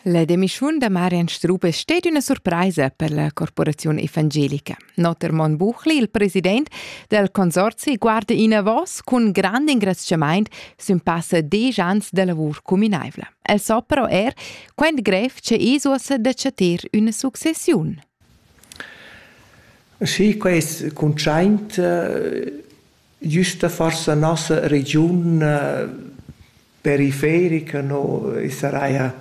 La demischun da Marian Strup es sted üna surpraisa per la corporaziun evangelica. Notter Mon Buchli, il president del consorzi, guarda inavos cun grand ingraziamaint sün passa desch ans da lavur cuminaivla. El so però er quant grev che Isuos da chatter üna successiun. Sì, quest cuntschaint Güsta forsa nossa regiun periferica no saraja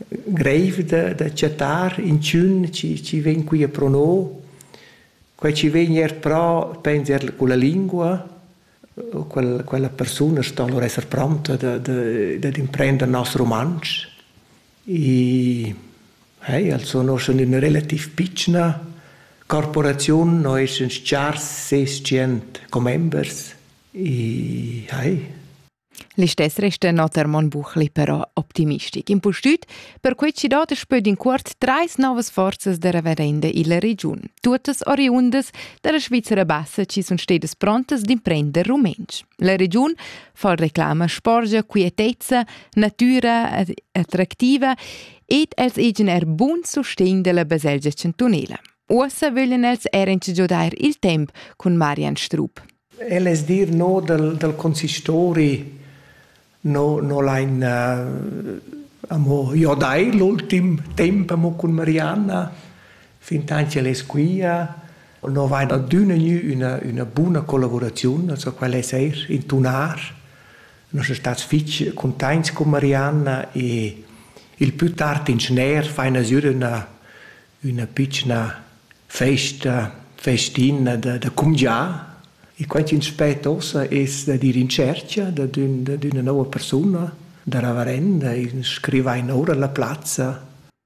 greiv da da chattar inchün chi chi vegn quia pro no. Quai chi vegn eir pro pens eir culla lingua. Quel quella persuna sto alura esser pronta da da dad imprender nos rumantsch. I eh, els sun uschè üna relativ pitschna corporaziun, no eschan chars ses tschient commembers. I eh. Listess restan oter Mon Buchli però optimistic. Impustüt per quei ci dat spöd in cuort treis novas forzas de reverende illa regiun, tuottas oriundas dalla Svizzera bassa ci sun stedas prontas d'imprender rumentsch. La regiun far reclama sporgia, quietezza, natüra attractiva ed els igen er bun sustegn della baselgia chantunela. Uossa vöglien els er giodar il temp con Marian Strup. El es dir no dal, dal consistori no, no lein uh, amo jodai l'ultim temp amo con Marianna fin tanti el es quia No vain adüna gnü üna üna buna collavuraziun, also quel es eir intunar. Nus sun stats fich cuntaints cun Marianna e il pü tard in schner faina sür üna üna pitschna festa, festina da da cumgià. E quai chi'ns spet uossa es da dir in tschercha dad ün dad üna nouva persuna, da ravarenda, in scrivain oura la plazza.